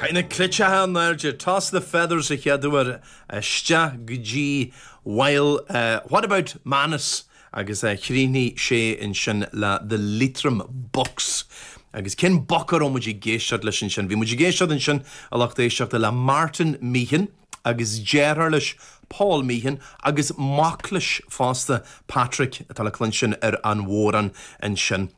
Caith na cleiteacha in airde, Toss the Feathers, an chéad uair isteach go dtí Bhuel What about Manus agus chríochnaigh sé ansin le the Leitrim Buck's. Agus cén boc a raibh muid ag éisteacht leis ansin? Bhí muid ag éisteacht ansin, a lucht éisteachta, le Martin Meehan agus deartháir leis, Paul Meehan, agus mac leis fosta, Patrick, atá le cluinstin ar an bhodhrán ansin.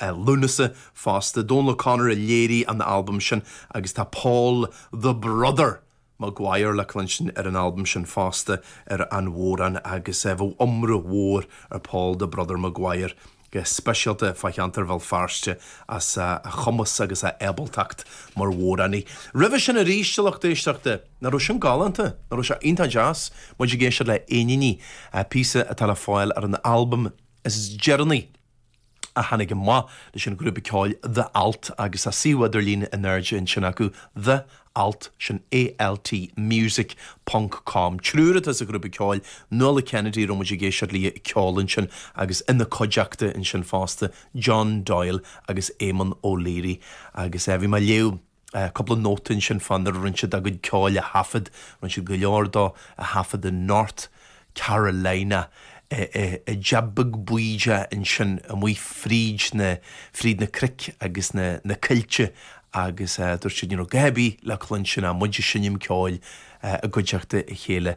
Lúnasa fosta, Donal O'Connor a léirigh an t-albam sin agus tá Paul 'The Brother' Maguire le cluinstin ar an albam sin fosta ar an bhodhrán agus bheadh iomrá mór ar Paul 'The Brother' Maguire go speisialta fá cheantar Bhéal Feirste as a chumas agus a ábaltacht mar bhodhránaí. Roimhe sin aríst, a lucht éisteachta! Nach raibh sin galánta? Nach raibh sé iontach deas? Muid ag éisteacht le 'An Iníon Rí' píosa atá le fáil ar an albam is deireanaí, a tháinig amach leis an ghrúpa ceoil The Alt agus tá suíomh idirlín in airde ansin acu, The Alt, sin A-L-T, Music, ponc, com. Triúr atá sa ghrúpa ceoil, Nuala Kennedy, a raibh muid ag éisteacht léi ag ceol ansin agus ina cuideachta ansin fosta, John Doyle agus Éamonn O'Leary. Agus eh bhí mé ag léamh. Cúpla nóta ansin fá nuair a rinne siad a gcuid ceoil a thaifead, rinne siad go leor dó a thaifead i North Carolina, i dteach beag bídeach ansin amuigh fríd na, fríd na cnoic agus na, na coillte agus dúirt siad ní raibh dadaidh ar bith le cluinstin ach muid ag seinm ceoil i gcuideachta a chéile.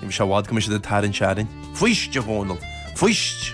Ní bheidh sé i bhfad go mbeidh siad ag tarraingt orainn. Fuist, a Dhónaill, fuist!